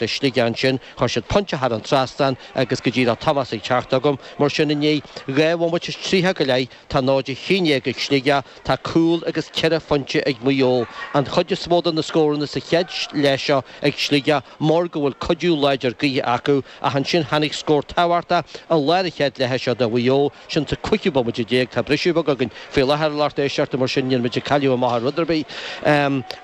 le Sligeach ansin, chuir siad pointe thar an trasnán agus go díreach Tomás ag teacht chugam, mar sin i ndiaidh dhá bhomaite is tríocha go leith, tá náid a haon déag ag Sligeach, tá cúl agus ceithre phointe ag Maigh Eo. An chuid is mó de na scóranna sa chéad leath seo ag Sligeach mar go bhfuil cuidiú láidir gaoithe acu ach ansin tháinig scór tábhachtach i lár an chéad leatha seo do Mhaigh Eo Sin sa 15ú bomaite tá briseadh beag againn faoi láthair a lucht éisteachta, mar sin níl muid ag cailleadh amach ar rud ar bith.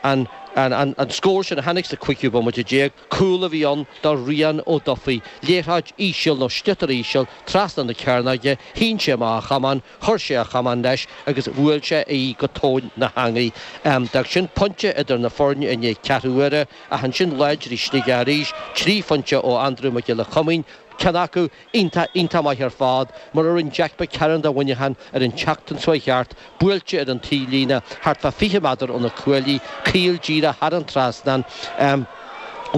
An an scór sin a tháinig sa 15ú bomaite, cúl a bhí ann do Rian Ó Dufaigh, liathróid íseal nó sliotar íseal trasna na cearnóige, shín sé amach a chamán, chuir sé a chamán leis agus bhuail sé í go tóin na heangaí. D'fhág sin pointe idir na foirne i ndiaidh ceathrú uaire ach ansin láidrigh Sligeach arís, trí phointe ó Andrew Mac Giolla Choimín, ceann acu, Iontach, iontach maith ar fad, mar a rinne Jack McCarron do Mhuineachán ar an tseachtain seo a chuaigh thart, buailte ar an taobhlíne, thart fá 20 méadar ó na cuaillí, caol díreach thar an trasnán,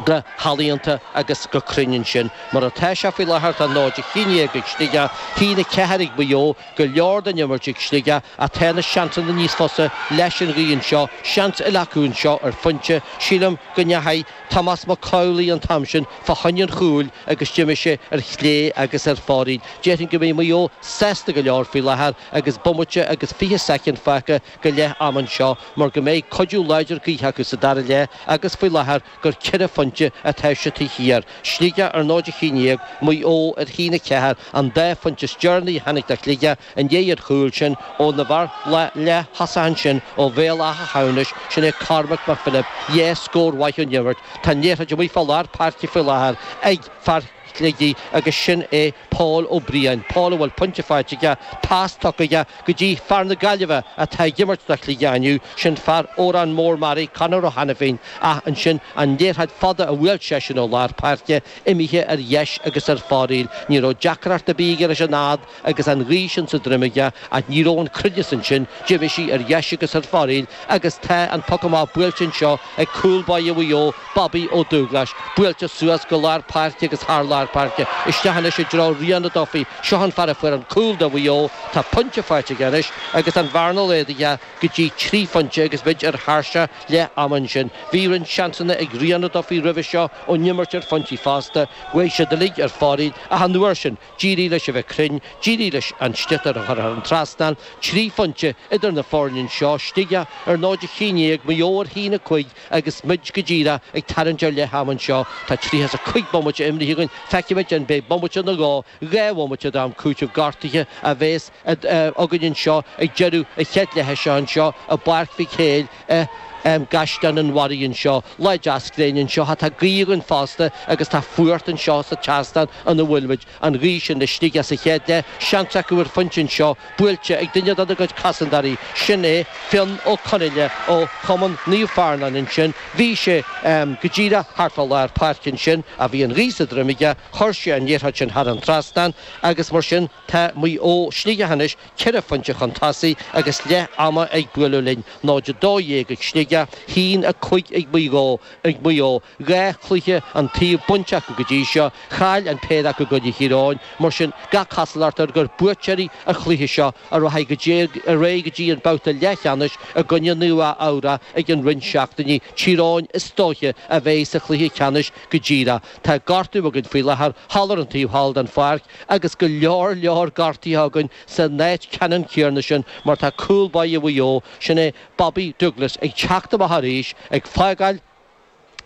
go healaíonta agus go cruinn ansin. Mar atá sé faoi láthair, tá 0 a haon déag ag Sligeach, a haon a ceathair ag Maigh Eo, go leor den imirt ag Sligeach, ach tá na seansanna níos fusa leis an ghaoth anseo, seans eile acu anseo ar phointe, sílim go ndeachaigh. Tomás Mac Amhlaigh an t-am sin fá choinne an chúil agus d'imigh sé ar chlé agus ar fóraoil. Déarfainn go mbeidh Maigh Eo sásta go leor faoi láthair agus bomaite agus fiche soicind fágtha go leith am anseo mar go mbeidh cuidiú láidir gaoithe acu sa dara leath agus faoi láthair gur ceithre phointe atá siad taobh thiar. Sligeach ar 0 a haon déag Maigh Eo ar haon a ceathair an dá phointe is deireanaí a tháinig do Shligeach I ndiaidh an chúil sin ón fhear leath-thosach ansin ó Bhéal Átha hAmhnais, sin é Cormac Mac Philib, dhá scór mhaith ón imirt, tá an liathróid amuigh fá lár páirce faoi láthair ag fear Shligigh agus sin é Pól Ó Briain, Pól a bhfuil pointe faighte aige, pas tugtha aige go dtí fear na Gaillimhe atá ag imirt do Shligigh inniu, sin fear Órán Mór Meáraí, Conor Ó hAinifín, ach ansin an liathróid fhada a bhuail seisean ó lár páirce, imithe ar dheis agus ar fóraoil, ní raibh deacracht ar bith aige leis an fhad, agus an ghaoth sin sa droim aige, ach ní raibh an cruinneas ansin, d'imigh sí ar dheis agus ar fóraoil agus tá an poc amach buailte anseo ag cúl báire Mhaigh Eo, Bobby Ó Dúghlais, buailte suas go lár páirce agus thar lár páirce, isteach anois i dtreo Rian Ó Dufaigh, seo an fear a fuair an cúl do Mhaigh Eo, tá pointe faighte aige anois agus an bhearna laghdaithe go dtí trí phointe agus muid ar thairseach leath ama ansin. Bhí roinnt seansanna ag Rian Ó Dufaigh roimhe seo ón imirt ar phointí fosta, chuaigh siad uilig ar fóraoil ach an uair sin, D'éirigh leis a bheith cruinn, d'éirigh leis an sliotar a chur thar an trasnán, trí phointe idir na foirne anseo Sligeach ar 0 a haon déag, Maigh Eo ar haon a cúig agus muid go díreach ag tarraingt ar leath ama anseo. Tá tríocha is a 5 bomaite imrithe againn, feicfimid an mbeidh bomaite nó dhó, dhá bhomaite d'am cúitimh gortaithe a bheas againn anseo ag deireadh an chéad leithe seo anseo i bPáirc Mhic Héil. i gCaisleán an Bharraigh anseo, Lá deas gréine anseo, ach tá gaoth againn fosta agus tá fuacht anseo sa tseastán ina bhfuil muid, an ghaoth sin ag Sligeach sa chéad leath, seans acu ar phointe anseo, buailte ag duine de na gcuid cosantóirí, sin é Fionn Ó Conghaile ó Chumann Naomh Fearnáin ansin, bhí sé go díreach thart fá lár páirce ansin ach bhí an ghaoth sa droim aige, chuir sé an liathróid sin thar an trasnán agus mar sin tá Maigh Eo Sligeach anois. 4 phointe chun tosaigh agus leath ama ag bualadh linn, 0-12 ag Sligeach, 1-5 ag Maigh Eo ag Maigh Eo, dhá chluiche an taobh bainte acu go dtí seo, chaill an péire acu i gcoinne Thír Eoghain. Mar sin, gach cosúlacht air gur buaiteoirí an chluiche seo a rachaidh go dtí ar aghaidh go dtí an babhta leathcheannais i gcoinne Nua-Eabhrac i gceann roinnt seachtainí. Tír Eoghain is dóiche a bheidh sa chluiche ceannais go díreach. Tá gortú againn faoi láthair thall ar an taobh thall den pháirc, agus go leor leor gortuithe againn san áit ceannann céarna sin mar tá cúl báire Mhaigh Eo, sin é Bobby Douglas, ag teacht amach arís, ag fágáil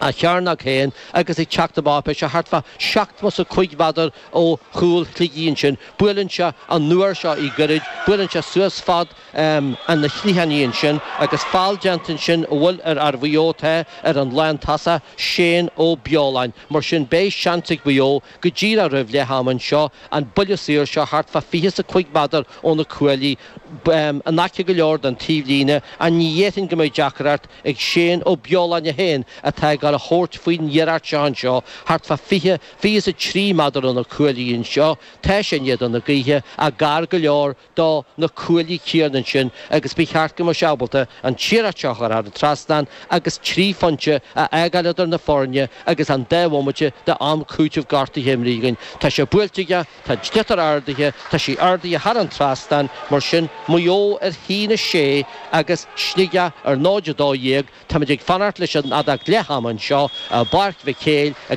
a chearnóg féin agus ag teacht amach, beidh sé thart fá seachtó 's a cúig mhéadar ó chúl Shligigh ansin. Buaileann sé an nuair seo í goirid, buaileann sé suas fad lena chliathánaí ansin agus feall déanta ansin an bhfuil ar fhear Mhaigh Eo tá ar an lántosaí, Shane Ó Beoláin. Mar sin beidh seans ag Maigh Eo go díreach roimh leath ama anseo, an buille saor seo thart fá fiche 's a cúig mhéadar ó na cuaillí, in aice go leor don taobhlíne, an ní dhéarfainn go mbeidh deacracht ag Shane Ó Beoláin é féin atá ag dul a thabhairt faoin iarracht seo anseo thart fá fiche, fiche 's a trí méadar ó na cuaillí anseo, tá sé in éadan na gaoithe, ach gar go leor, do na cuaillí céarna ansin agus ba cheart go mbeadh sé ábalta an liathróid a chur thar an trasnán agus trí phointe a fhágáil idir na foirne agus an dá bhomaite d'am cúitimh gortaithe imrithe againn. Tá sé buailte aige, tá an sliotar ardaithe, tá sé ardaithe thar an trasnán, mar sin, Maigh Eo ar 1-6 agus Sligeach ar 0-12, táimid ag fanacht leis an fheadóg leathama anseo i bPáirc Mhic Héil i